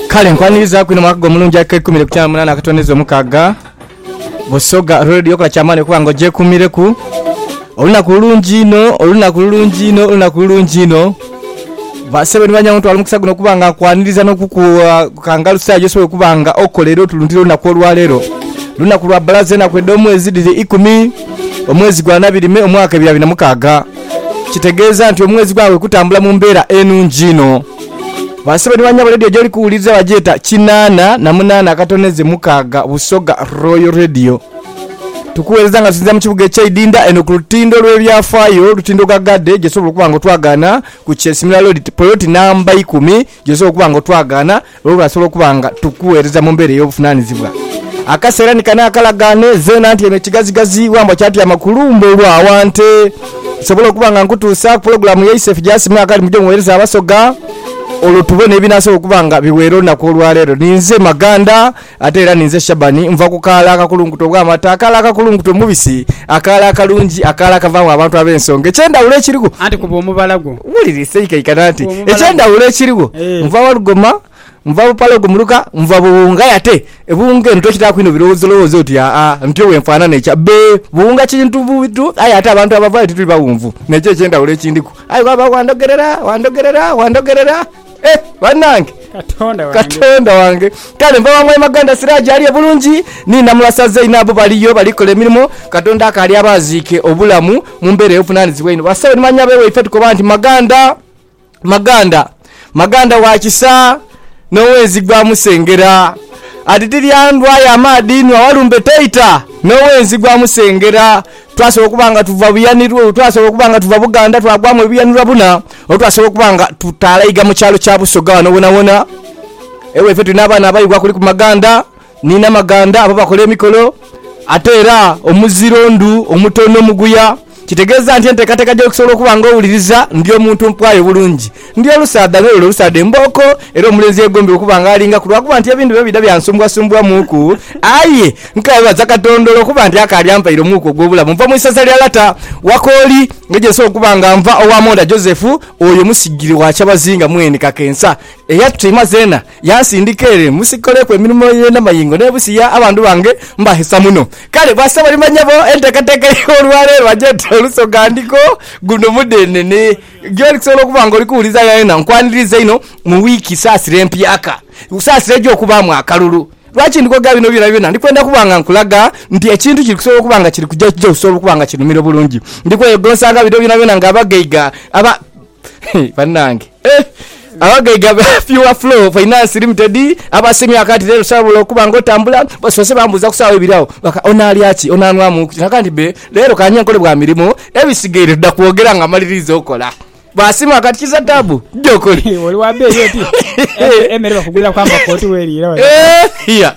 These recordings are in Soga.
Kale nkwaniriza kwino mwaka gw'omulungi ak'eikumi n'ekumi na munaana akatondeza omukaaga Busoga olwo leediyo kola kyamaani okuba nga ogyekuumireku olunaku lulungi inho olunaku lulungi inho olunaku lulungi inho basebo ni banyago ntwala omukisa guno okuba nga nkwaniriza n'okukukangalusa gyosobola okuba nga okola era otulundire olunaku olwaleero lunaku lwa bbalaza enaku edh'omwezi dhiri ikumi omwezi gwa nabirime omwaka ebiri abiri na mukaaga kitegeeza nti omwezi gwabwe kutambula mu mbeera enungi inho. Ba sebo ni banyabo ledio gyoli kuwuliriza bagyeta kinaana na munaana akatoneze mukaaga Busoga Royal Radio. Tukuweereza nga tusinzira mu kibuga ekye Idinda eno ku lutindo lwe byafaayo olutindo gha Gade gyosobola okuba nga otwagaana ku Kyesimira Road poloti namba ikumi gyosobola okuba nga otwagaana Olwasobola okuba nga tukuweereza mu mbeera ey'obuvunaanizibwa, akaseera ni kano akalagaane zeena nti eno kigazigazi wambwa kyatyama ku lumbe olwo aghante. Nsobola okuba nga nkutuusa ku pulogulaamu yaise Fijasi Mwaka ali mu Gye Muweereza Abasoga, olwo tubone ebinaasobola okuba nga biweera olunaku olwaleero. Ninze Maganda, Ate era ninze Shabani, nva ku kaala akakulunkuta obw'amata, akaala akakulunkuta omubisi, akaala akalungi, akaala akavaamu abantu ab'ensonga. Eky'endhawulo ekirigho. Anti kuba omubala gwo. Wulira esaikaikano anti. Kuba omubala gwo. Eky'endhawulo ekirigho, Eeh. nva wa lugoma, nva bupale ogumuruka, nva buwunga. Aye ate ebuwunga eno tokitaaku inho birowoozolowoozo oti, Aa, ntyo bwe nfaanana ekya. Bbe, buwunga kintu buntu, aye ate abantu abavaayo tituli baghunvu. Nekyo eky'endhawulo ekindiku. Aye bw'aba wandhogerera, wandhogerera, wandhogerera. Eh, banange! Katonda wange. Katonda wange! Kale nva wa Mwami Maganda Siraje ali e Bulungi, ni Namulasa Zain nabo baliyo bali kola emirimo. Katonda akaali abaaziike obulamu mu mbeera ey'obuvunaanizibwa einho. Basawo ni manyabe waife tukoba nti Maganda, Maganda, Maganda wa kisa n'owenzi gwa musengera. Ati tilya ndhwa ya maadhi inhwa walumbe toita n'owenzi gwa musengera. Twasobola okuba nga tuva Buyanirwa, twasobola okuba nga tuva Buganda twagwamu Ebuyanirwa buna, oba twasobola okuba nga tutalaiga mu kyalo kya Busoga ghano ghonawhona. Ewaife tulina abaana abaibwa kuliku Maganda ni Namaganda abo bakola emikolo. Ate era omuziro ndhu omutono, muguya. Kitegeeza nti enteekateeka gye okusobola okuba nga owuliriza ndi omuntu mpwayo bulungi. Ndi olusaadha n'olwo olusaadha embooko, era omulenzi eyegombye okuba nga alingaku, lwa kuba nti ebintu bino bidha byansumbwasumbwamuuku. Aye nkebaza Katonda olw'okuba nti akaali ampaire omwuka ogw'obulamu. Nva mu isaza lya lata wa Kooli, nga gye nsobola okuba nga nva owa Monda Joseph, oyo musigire wa kyabazinga mwene kakensa, eyatutaima zeena, yansindika ere munsi nkoleku emirimo ye n'amayingo n'ebusiya abandhu bange mbahesa muno. Kale bwasa balimanya bo enteekateeka y'olwaleero agy'oti Olusoga ndiko guno mudheenene. Gy'oli kusobola okuba nga oli kuwuliza yonayona, nkwaniriza inho mu wiiki saasira empyaka. Saasira eja okubaamu akalulu. Lwaki ndi kwogera bino byonabyona? Ndi kwenda kuba nga nkulaga nti ekintu kiri kusobola okuba nga kiri kuja ekija okusobola okuba nga kinhumira obulungi. Ndi kweyegonsanga bino byonabyona ng'abagaiga aba. Hee, bannange! Eh! Abagaiga ba Pure Flow Finance Limited abasiimye ghaka nti leero saabula okuba nga otambula basoose bambuuza ku sawa ibiri agho ghaka onaalya ki, onaanhwamu ki nagamba nti bee leero ka nje nkole bwa mirimu ebisigaire tuda kwogera nga mmaliriiza okola. Baasiima ghaka nti kiza taabu dda okole. Oli wa beeyi oti? Emere bakuguliraku amakooto weriira wena. Eeh iya.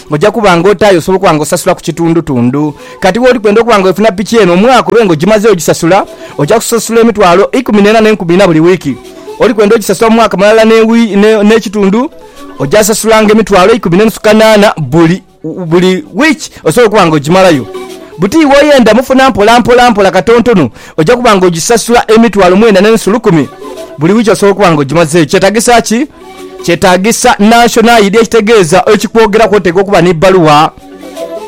Oja kuba nga oti aye osobola okuba nga osasula ku kitundutundu. Kati bwoli kwenda okuba nga wefuna piki eno omwaka obe nga ogimazeewo ogisasula, oja kusasula emitwalo ikumi n'ena n'enkumi ina buli wiiki. Oli kwenda ogisasula mu mwaka mulala n'ekitundu, oja sasulanga emitwalo ikumi n'enusu kanaana buli buli wiiki osobole okuba nga ogimalayo. Buti bwoyenda mufuna mpola mpola mpola katontono oja kuba nga ogisasula emitwalo mwenda n'enusu lukumi buli wiiki osobola okuba nga ogimazeeyo. Kyetagisa ki? Kyetaagisa National ID ekitegeeza ekikwogeraku oteekwa okuba ni bbaluwa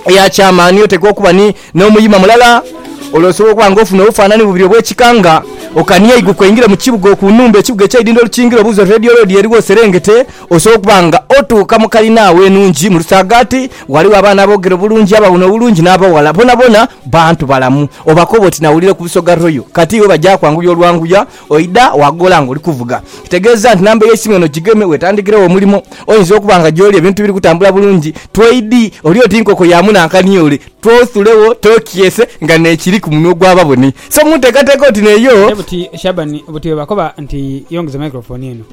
eya kyamaani, oteekwa okuba ni n'omuyima mulala olwo osobola okuba nga ofuna obufaanani bubiri obw'ekika nga okania eiguka oingire mu kibuga oku nhumba ekibuga eky'eidhindho lukingire obuuze oti Radio Road eriwa oserengete osobola okuba nga otuuka mu kalina agho enhungi mu Lusaagaati ghaligho abaana aboogera obulungi abawuuna obulungi n'abawala boonaboona bantu balamu obakoba oti nawulira ku Busoga Royal kati iwe baja kwanguyia olwanguya Oidha waagoola ng'oli kuvuga. Kitegeeza nti namba ey'eisimu eno gigeme weetandikiregho omulimo. Oyinza okuba nga gy'oli ebintu biri kutambula bulungi twaidi, oli oti nkoko ya munankani ole, twothulegho tookyese nga n'ekiri ku munwa ogw'ababoni. So mu nteekateeka oti n'eyo. Aye buti Shaban, buti bwebakoba nti yongeza microphone eno.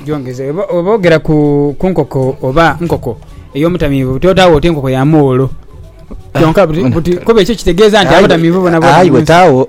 Gyongeze. Bw'oba oogera ku nkoko oba nkoko ey'omutamiivu buti otaagho oti nkoko ya muwolo. Kyonka buti, buti kuba ekyo kitegeeza nti abatamiivu boona boona mu nsi. Aye weetaagho.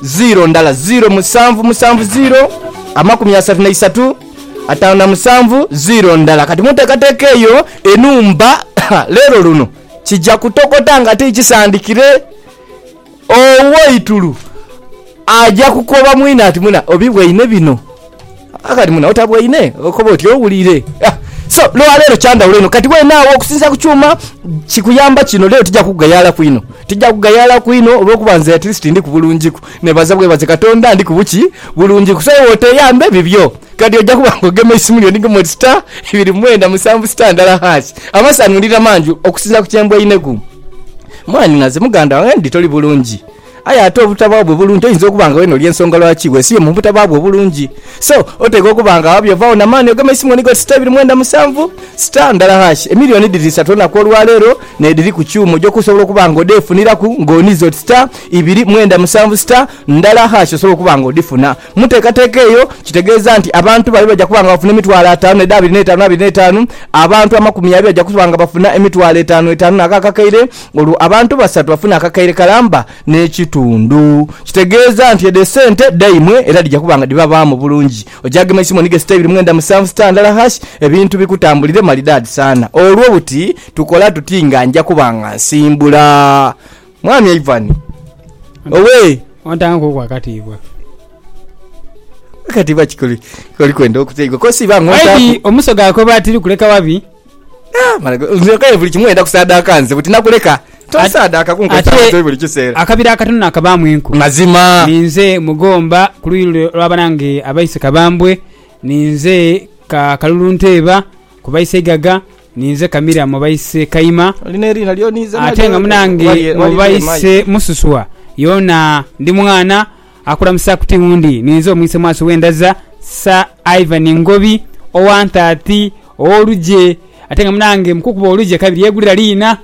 Ziiro ndala, ziiro musanvu musanvu ziiro amakumi asatu na isatu ataanu na musanvu ziiro ndala. Kati muntekateka eyo enhumba leero luno kija kutokota nga ti kisandikire. Owoitulu aja kukoba mwine ati, Mwina, obibwaine bino? Kati muno otabwaine okoba oti owulire so lwa leero kyandhawulo inho kati wenaagho okusinzira ku kyuma kikuyamba kino leero tija kukugayaalaku inho tija kugayaalaku inho olwokuba nze at least ndiku bulungiku nebaza bwebaze katonda ndiku buki bulungiku so iwe oteyambe bibyo kati oja kuba nga ogema eisimu lyo nigema oti star ibiri mwenda musanvu star ndala hash amasanhulira mangi okusinzira ku kyembwaineku mwanhi naze muganda wange ndidhi toli bulungi. Aye ate obutabagho bwe bulungi oyinza okuba nga wena oli ensonga lwaki wesibye mu butabagho bwe obulungi. So, oteekwa okuba nga wabyo ovagho na maani ogeme eisimu onige oti star ibiri mwenda musanvu, star ndala hash. Emilioni dhiri isatu olunaku olwa leero n'edhiri ku kyuma oja okusobola okuba nga odheefuniraku ng'onize oti star ibiri mwenda musanvu, star ndala hash osobola okuba nga odhifuna. Mu nteekateeka eyo kitegeeza nti abantu bali baja kuba nga bafuna emitwalo ataanu n'edha abiri n'etaanu abiri n'etaanu. Abantu amakumi abiri baja kuba nga bafuna emitwalo etaanu etaanu n'akaakakeire. olwo abantu basatu bafune akakaire kalamba n'ekitundu. Kitegeeza nti edho esente dhaimwe era dhija kuba nga dhibabaamu bulungi. Oja gema eisimu onige sita ibiri mwenda musanvu sita ndala hash ebintu bikutambulire malidaadi sana. Olwo buti tukola tuti nga nja kuba nga nsimbula? Mwami Ivan owee. Ontanguku akatiibwa. Akatiibwa ki koli kwenda okuteebwa? Kosi iba ng'ontaku. Maybe omusoga akoba ati likuleka wabi. Ah, mwana gwe, nze kale buli kimu oyenda kusaadaaka nze, buti nakuleka tosaadaaka kunkozesa Ate butoyi buli kiseera. akabira akatono naakabaamu enku. Mazima. Ninze Mugomba ku luuyi lule olwa banange abaise Kabambwe, ninze ka Kalulu Nteeba ku baise Igaga, ninze Kamira mu baise Kaima, Oli n'eriina lyo ninze ate nalyo nga munange wali- mu wali eri emayi. baise Mususwa yoona ndi mwana Akulamusa ku tiwundi ninze omwise mwasi w'endaza Sir Ivan Ngobi owa Ntaati ow'olugye ate nga munange mukukuba olugye kabiri yegulira liina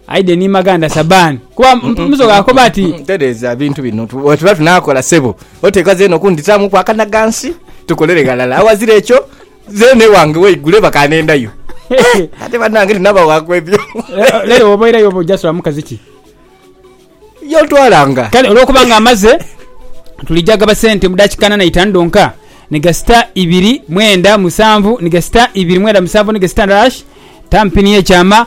Aiden Imaganda Sabani kuba musoga akoba ati. Tereeza ebintu bino bwetuba tunakola ssebo oteekwa zeena okundhitaamuku akanaghansi tukolere ghalala aghazira ekyo zeena ewange weigule baka nendayo ate banange tinabawaku ebyo. Lero bwoba oirayo oba oja sulamu mukazi ki? y'otwalanga. Kale olw'okuba ng'amaze, tuli gyagaba sente mu daakika ana na itaanu dhonka ni gasita ibiri mwenda musanvu ni gasita ibiri mwenda musanvu ni gasita ndala tampini y'ekyama.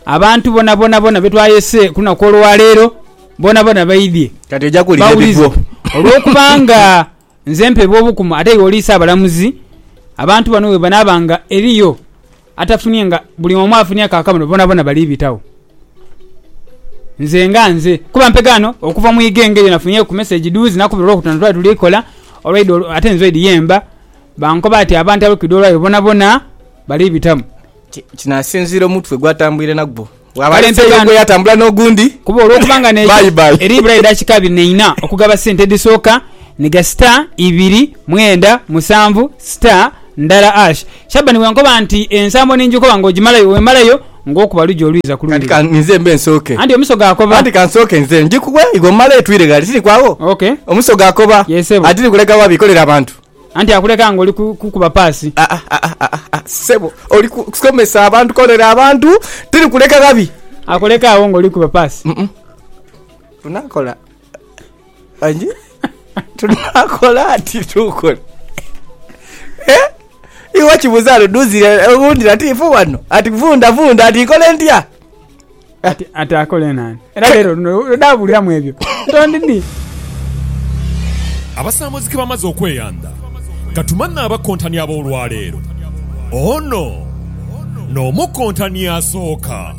Abantu bona bonabona be twayese ku lunaku olwa leero bonabona baidhie Kati oja kuwulira bawulize, ebigwo. olw'okuba nga nze mpeebwa obukumu ate iwe oli Ssaabalamuzi, abantu bano bwe banaaba nga eriyo. Atafunye nga buli omu afunye ka akabono bonabona bali bitagho nze nga nze kuba mpega ghano okuva mu iga engeri nafunye ku message duuzi nakubira olwokutaano twali tuli kola olwaidha olw ate nze oidhi yemba bankoba ati abantu abekwidha olwayo bonabona bali bitamu. Kino asinziira omutwe gwatambwire nagwo. Bw'aba ali nte y'ogwo yatambula n'ogundi. Kuba olw'okuba nga n'eyo eri ibula edakika abiri n'eina okugaba sente edhisooka ni gasita ibiri mwenda musanvu sita ndala ash. Shabani bw'ankoba nti ensambo ninjikoba ng'ogimalayo wemalayo ng'okuba lugi olwiza ku lundi luno. Anti omusoga akoba. Anti ka nsooke nze njikuwe iwe omale twire ghale. Tiri kwagho? Omusoga akoba. Ati ni kuleka wa bikolera abantu? Anti akuleka nga oli kukuba paasi. Aa-aa-aa-aa-aa-aa ssebo oli ku, kusomesa abantu koonera abantu, tiri kuleka ghabi. Akuleka agho nga oli kukuba paasi. Mm-mm. Tunakola angi tunakola ati tukole Eh? iwe kibuza ludhuzi eh, owundi latifu wano ati vundavunda ati nkole ntya Ati, ati akole naani? Era leero luno lwedaabuuliramu ebyo. Tondi ni. Abasaamozi ke bamaze okweyandha, ka tumanhe abakontani ab'olwaleero. Ono n'omukontani asooka.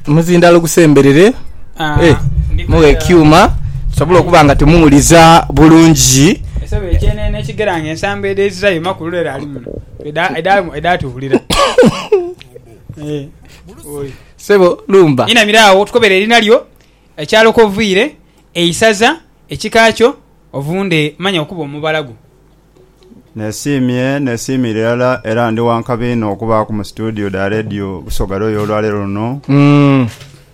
Omuzindaalo gusemberere. Eh, mughe ekyuma tusobole okuba nga tumuwuliza bulungi. Esebo ekyenene ekigera ng'ensambo edh'ezirai, makulu leero ali muno. Eda, eda, edaatuwulira. Sebo lumba. Inamira agho tukobere erina lyo, ekyalo kwoviire, eisaza, ekika kyo, ovunde manya okuba omubala gwo. Nesiimye, nesiimira irala era ndi wa nkabi inho okubaaku mu situdiyo dha leediyo Busoga Royal olwaleero luno.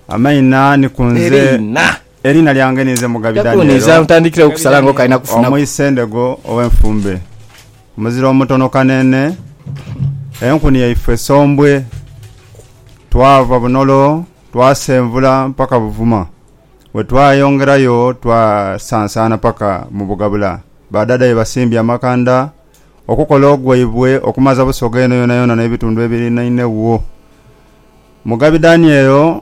Amaina ni ku nze. Eriina lyange ninze Mugabi Daniel Omwise Ndego ow'Enfumbe. Muzira omutono kanene, enkuni yaifwe sombwe. Twava Bunolo twasenvula mpaka Buvuma. Bwe twayongerayo twasansaana paka mu Bugabula. Ba dada ye basimbye amakanda okukola ogwaibwe okumaza Busoga eno yonayona n'ebitundu ebirinainegho. Mugabi Daniel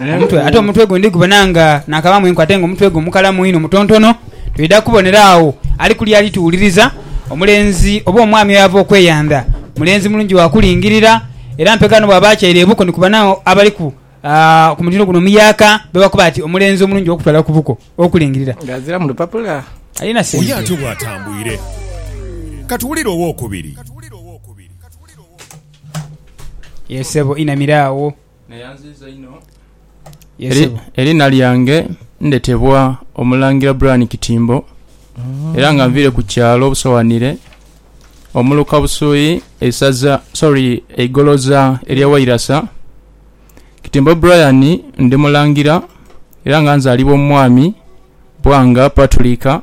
omutwe ate omutwe gundi gubona nga nakabaamu enkwe ate nga omutwe gwe mukalamu inho mutontono, twidha kubonera agho ali kule ali tuwuliriza. Omulenzi oba omwami oyo ava okweyandha mulenzi mulungi wa kulingirira era mpegha ni bwaba atyaire ebuko ni kubona agho abaliku ku mutindo guno omuyaaka be bakoba ati omulenzi omulungi ow'okutwala ku buko ow'okulingirira. Nga aziramu lupapula. Alina sente. Oyo ati owo atambwire. Ka tuwulire ow'okubiri. Yee ssebo, inamira agho. Neyanziiza inho. Yes Eri- sebo. Eriina lyange ndhetebwa Omulangira Brian Kitimbo era nga nviire ku kyalo Busowanire, omuluka Busui, eisaza sorry eigoloza erya Wairasa. Kitimbo Brian ndi mulangira era nga nzalibwa mu mwami Bwanga Paturika.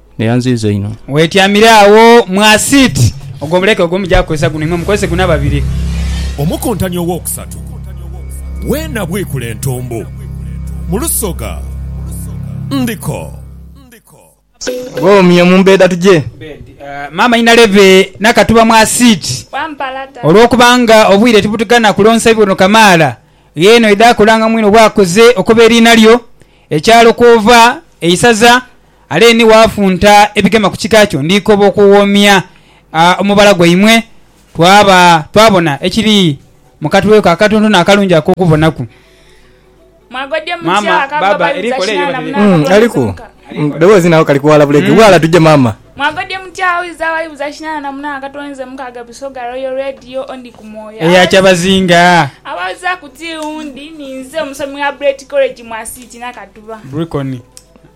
Ne yanziiza inho. Weetyamire agho mu asiiti. Ogwo muleke, ogwo muja kukozesa guno. Imwe mukozese guno ababiri. Omukuntani owookusatu we nabwikula entumbu mu lusoga ndiko. Bw'omye mu mbeeda tuje. Maama Inalebe n'akatuba mu asiiti. Olw'okuba nga obwire tibutugana kulonsa bibono kamaala, gh'eno idha kulanga mwine obwakoze okuba eriina lyo, ekyalo kw'ova, eisaza, Ale ni waafunta ebigema ku kika kyo, ndikoba okuwoomya omubala gwaimwe, twaba twabona ekiri mu katwe ko akatontono akalungi ak'okubonaku. Maama, Baaba, eri kole eyo batele. Aliku mudhoboozi nako kali kuwaala bulege, Waala tuje maama. Eya kyabazinga. Bricony.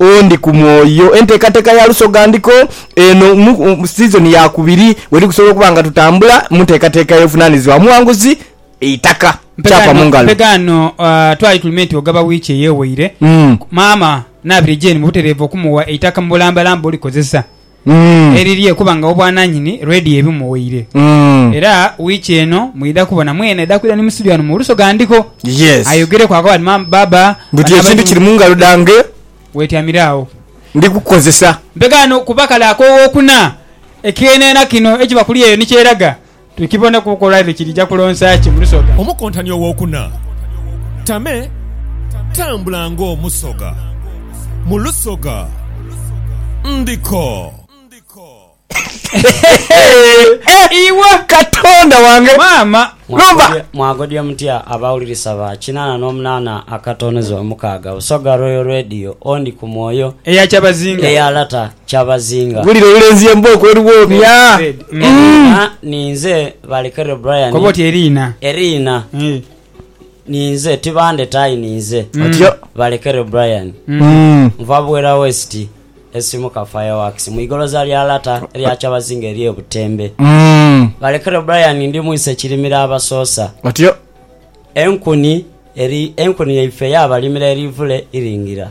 Oh ndi ku mwoyo. Enteekateeka ya lusogandhiko eno mu sizoni ya kubiri bwe tukusobola okuba nga tutambula mu nteekateeka ey'obuvunaanyizibwa omuwanguzi eitaka. Kyapa mu ngalo. Mpegha ghano twali tuli me nti ogaba wiiki eyeweire, maama naabire Jane mu butereevu okumuwa eitaka mu bulambalamba bwe olikozesa. erirye kuba nga obwananyini Radio ebimuwaire era wiiki eno mwidha kubona mwene aidha kwidha ni mu studio ghano mu Oluso Ghandiko ayogereku akoba ati maama baba buti ekintu kiri mungalo dhange wetyamire agho ndi kukukozesa. Mpegaano kuba kale ak'owokuna ekyenena kino ekiba kuli eyo ni kyeraga. Tukibone ku nkola edho kirija kulonsa ki mu lusoga. Omukontani ow'okuna, Tame, tambula ng'omusoga mu lusoga. Ndiko. Iwe! Katonda wange! Maama! Lova! Mwagodya mutya abawulirisa ba kinaana n'omunaana akatoneza omukaaga Busoga Royal Radio, Ondi ku Mwoyo, Eya Kyabazinga. eya Lata, kyabazinga. Mpulira olulenzi ye mbooko eluwoomya Eriina ninze Balekere Brian Koba oti Eriina. Eriina ninze Tibandeta ayi ninze Otyo. Balekere Brian Nva Bwera West Esimuka Fireworks mu igoloza lya Lata erya Kyabazinga erye Butembe Balekere Brian Ndi mwise kirimira abasoosa Otyo. Enkuni eri Enkuni yaife yabalimira erivule iringira.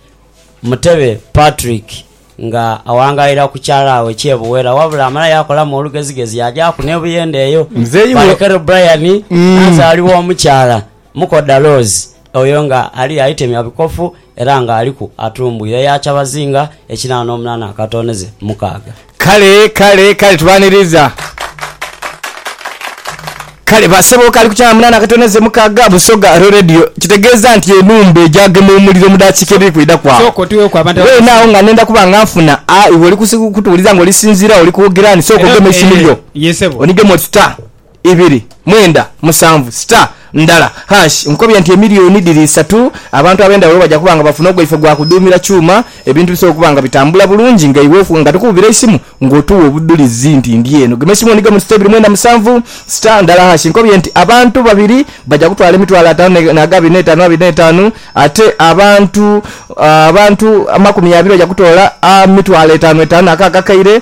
Mutebe Patrick nga awangalira ku kyalaawe ekye Buwera wabula amala yakolamu olugezigezi yajaaku ne Buyende eyo Muzeeyi we. Balekero Brian nazaalibwa omukyala Mukodha Rose oyo nga ali aitemya bikofu era nga aliku atumbwire eya kyabazinga ekinaana omunaana akatooneze mukaaga. Kale, kale, kale tubaniriza. Kale basebo kali ku kyana munana akatoneze mukaga busoga ro radio kitegeza nti enumba egyagema omuliro mudakika ebiri kwidaku awo wena awo nga nenda kuba nga nfuna a iwe oli kutuwuliza nga olisinzira oli kwogera ni soka ogeme esimu yo onigemu oti ta ibiri, mwenda, musanvu, sita, ndala, hash. Nkobye nti emiliyoni dhiri isatu abantu ab'endhawulo baja kuba nga bafuna ogwaife gwa kudhuumira kyuma, ebintu bisobole okuba nga bitambula bulungi nga iwe nga tukukubira eisimu nga otuwa obudhulizi nti ndi eno. Gema eisimu onigemu sita ibiri, mwenda, musanvu, sita, ndala, hash. Nkobye nti abantu babiri baja kutwala emitwalo ataanu n'agabi n'etaanu abiri n'etaanu ate abantu abantu amakumi abiri baja kutoola amitwalo etaanu etaanu ako akakaire.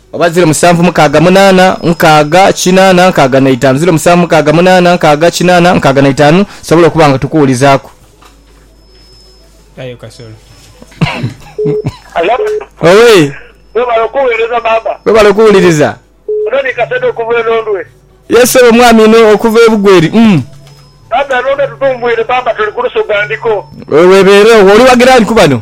Oba ziro musanvu mukaaga munaana nkaaga kinaana nkaaga na itaanu ziro musanvu mukaaga munaana nkaaga kinaana nkaaga na itaanu tusobole okuba nga tukuwulizaaku. Aye kasolo. Owee. Webale okuwereza maama. Webale okuwuliriza. Ono ni Kasadha okuva e Londwe. Yes ssebo mwami ino okuva e Bugweri umm. Bambi e Londwe tutumbwire maama tuli ku lusoga ndiko. Webeere owo. Oli wa giraani ku bano?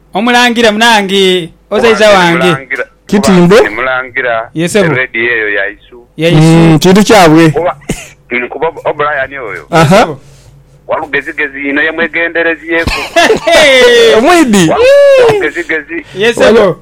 Omulangira, munange, ozaiza wange. Kitimbo. Ye sebo. Ya isu. Kintu kyabwe. Aha. Omwidi. Ye sebo.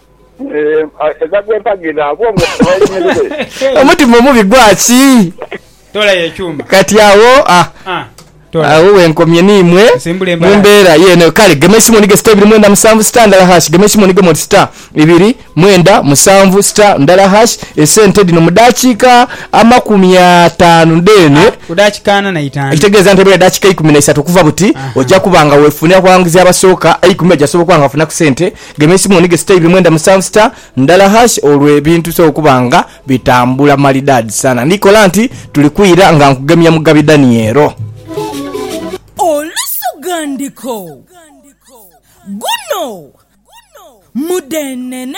Omutima omubi gwaki? Kati agho agho wenkomye n'imwe mu mbeera y'eno. Kale gema eisimu onige star ibiri mwenda musanvu star ndala hash. Gema eisimu onigemu oti star ibiri mwenda musanvu star ndala hash. Esente dhino mu daakiika amakumi ataanu dheene, ekitegeeza nti ebula edaakiika eikumi na isatu okuva buti, oja kuba nga wefunira ku bawanguzi abasooka eikumi, oja kusobola okuba nga wafunaku sente. Gema esimu onige siteebi mwenda musanvu star ndala hash olwo ebintu bisobola okuba nga bitambula malidaadi sana. Ndi kola nti tuli kwira nga nkugemya Mugabi Daniel. Olusughandiko, Guno mudhenene.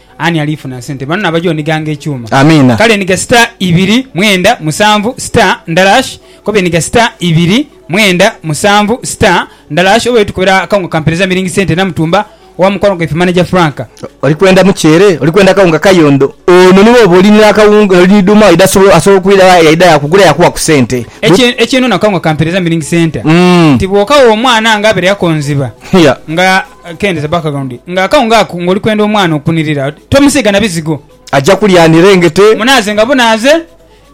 Ani alifuna sente banno abaja onighanga ekyuma? Amiina. Kale enhiga sita ibiri mwenda musanvu sita ndala ash koba enhiga sita ibiri mwenda musanvu sita ndala ash oba yo tukubira akawunga kampereza miringi sente Namutumba owa mukwano gwaife Manager Frank. Oli kwenda muceere? Oli kwenda kawunga kayondo? Ono ni bwoba oli n'akawunga oli ni dhuuma waidha asobola asobola okwidha wa yaidha yakugula yakuwa ku sente. Bwe. Ekye ekyenona akawunga kampereza miringi senta Umm. Nti bw'okagha omwana nga abaire yakonziba Hia. nga. Kendeza background nga akawunga ako nga oli kwenda omwana okunirira tomusiiga na bizigo. Aja kulya anirengete. Munaaze nga bunaaze.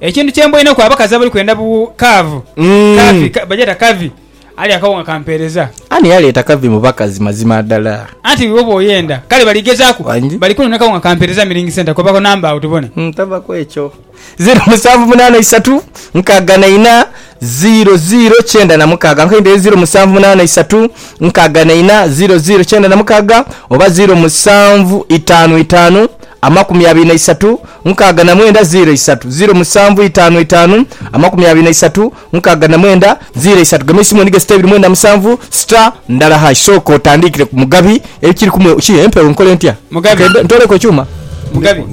Ekintu kye mboineku abakazi abali kwenda bu kaavu, curvy, bagyeta curvy, alya akawunga ka mpeereza. Ani yaleeta curvy mu bakazi mazima dala? Anti iwe oba oyenda. Kale bali gezaaku. Bali kunona kawunga ka mpeereza Milling Centre. Koba ku number awo tubone. Tava kwekyo. Zeero musanvu munaana isatu nkaaga na ina zeero zeero kyenda na mukaaga nkaidhire zeero musanvu munaana isatu nkaaga na ina zeero zeero kyenda na mukaaga oba zeero musanvu itaanu itaanu amakumi abiri na isatu nkaaga na mwenda zeero isatu zeero musanvu itaanu itaanu amakumi abiri na isatu Nkaaga na mwenda, ziira isatu, gema eisimu onige sita ibiri mwenda musanvu sita ndala hash. Sooka otandiikire ku Mugabi. Ekiri kumwe ki? Empewo nkole ntya? Mugabi. Ke ntooleku ekyuma? Mugabi.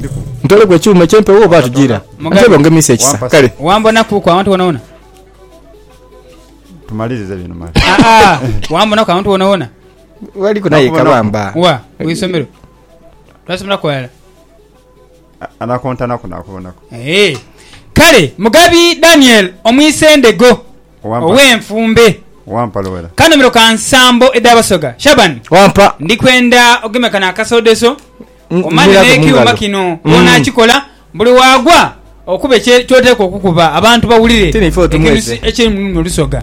Ntooleku ekyuma eky'empewo oba tujiira? Mugabi. Ntebe ongemiise ekisa. Kale. Wambonakuuku awantu wonawona? Tumalirize bino male. Aa, wambonaku awantu wonawona? Waliku naye Nakubonaku. kabamba. Wa? Ku isomero? Twasomeraku ghalala? Anakontanaku naakubonaku. Kale mugabi Daniel Omwisendhego ow'enfumbe, kanhumiro ka nsambo edh'Abasoga, Shaban, ndi kwenda ogeme kano akasoodoso omane n'ekyuma kino bw'onaakikola buli waagwa okube ky'oteekwa okukuba abantu bawulire ekinusu ekiri mu lulimi Olusoga.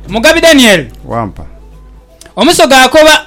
Mugabi Daniel, Omusoga akoba.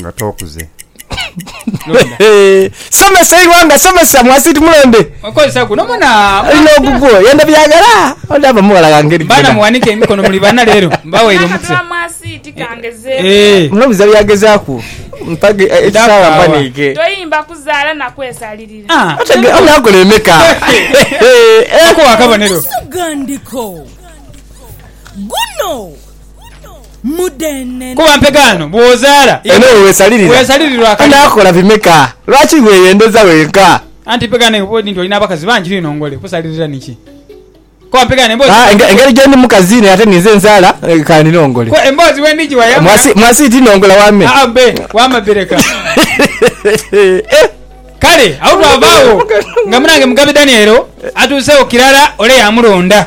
Nga tokuze. Somesa eighanga somesa mwasiti mulonde. Okozesa guno muna. Alina ogugwo yenda byagala ondaba mughala ghange eri Bana muwanike emikono muli bana lero mbawaire omukisa. Akatula mwasiti kangezeku. Eeh. Munobiza byagezaku mpage eh, ekisala mpanike. Toyimba kuzala na kwesalirira. Ah. Otegera oyo akola emeka. Okuwa akabonero. Omususu gandiko guno. Kuba mpegaano bw'ozaala. Eno we weesalirira. Weesalirirwa akalimu. Onaakola bimeka? Lwaki weeyendeza wenka? Anti mpegaano eyo bw'oli nti oli n'abakazi bangi ni nongole, kusalirira ni ki? Kuba mpegaano emboozi Haa, bw'endi. engeri gyendi mukazi naye ate ninze nzaala ka ni nongole. Kuba emboozi bw'endi giwa ya muna. Mwasi, mwasi ti nongola wame. Haa bbe, wama bbe leka. Eh! Kale agho twava agho nga munange Mugabe Daniel atuuseegho kirala ole yaamulonda.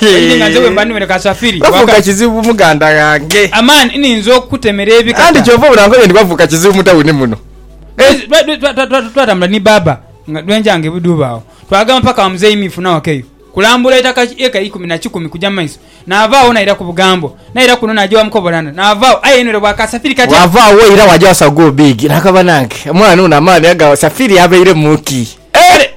Eninga nze bwe mba niwere kasafiri. Bavuuka kizibu muganda ghange. Aman ninza okukutemera ebikata. Anti kyova obona nkoye nti bavuuka kizibu mu tawuni muno. Twatambula ni baaba nga dwenja nga ebuduuba agho. Twagama paka wa muzeeyi Miifu nawakeyo kulambula itaka eka ikumi na kikumi kuja mu maiso. Naavaagho naira ku Bugambo. Naira kuno naja wa mukobolanda. Naavaagho aye enwere bwa kasafiri kati. Wava agho oira waja wa Sagu Obiigi. Naka banange omwana ono amaani aga safiri abeiremu ki?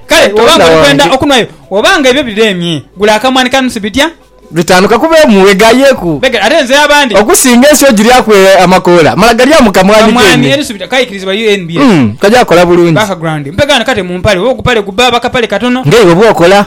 Kale bwoba nga oli kwenda okunwayo, oba nga ebyo bireemye, gula akamwani ka nusu bitya? Bitaanu ka kube mu weghayeku. Begere ate nze abandi. Okusinga ensi ogiryaku amakoola, mala galya mu kamwani keene. Kamwani enusu bitya kaikirizibwa UNBF. Umm kagya kola bulungi. Background, Mpegho ano kate mu mpale oba ogupale gubba aba kapale katono. Nga iwe bwokola.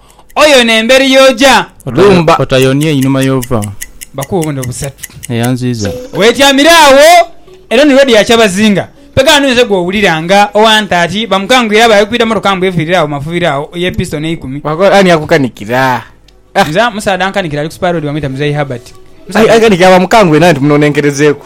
Oyona emberi y'oja. Lumba. Otayonia einhuma y'ova. Bakuwe obubonero busatu. Eyanziiza. Weetyamire agho, eno ni road ya Kyabazinga. Mpegha ghano oyinza gw'owulira nga owa Ntaati bamukangwire abaaghe kwidha mmotoka mbu efiirire agho mu mafubiro agho ye pisitoni eikumi. Bakola ani akukanikira? Nze musaadha ankanikira ali ku Spur Road bamweta Muzei Herbert. Musaadha. Aikanikira bamukangwire nawe nti munonenkerezeeku.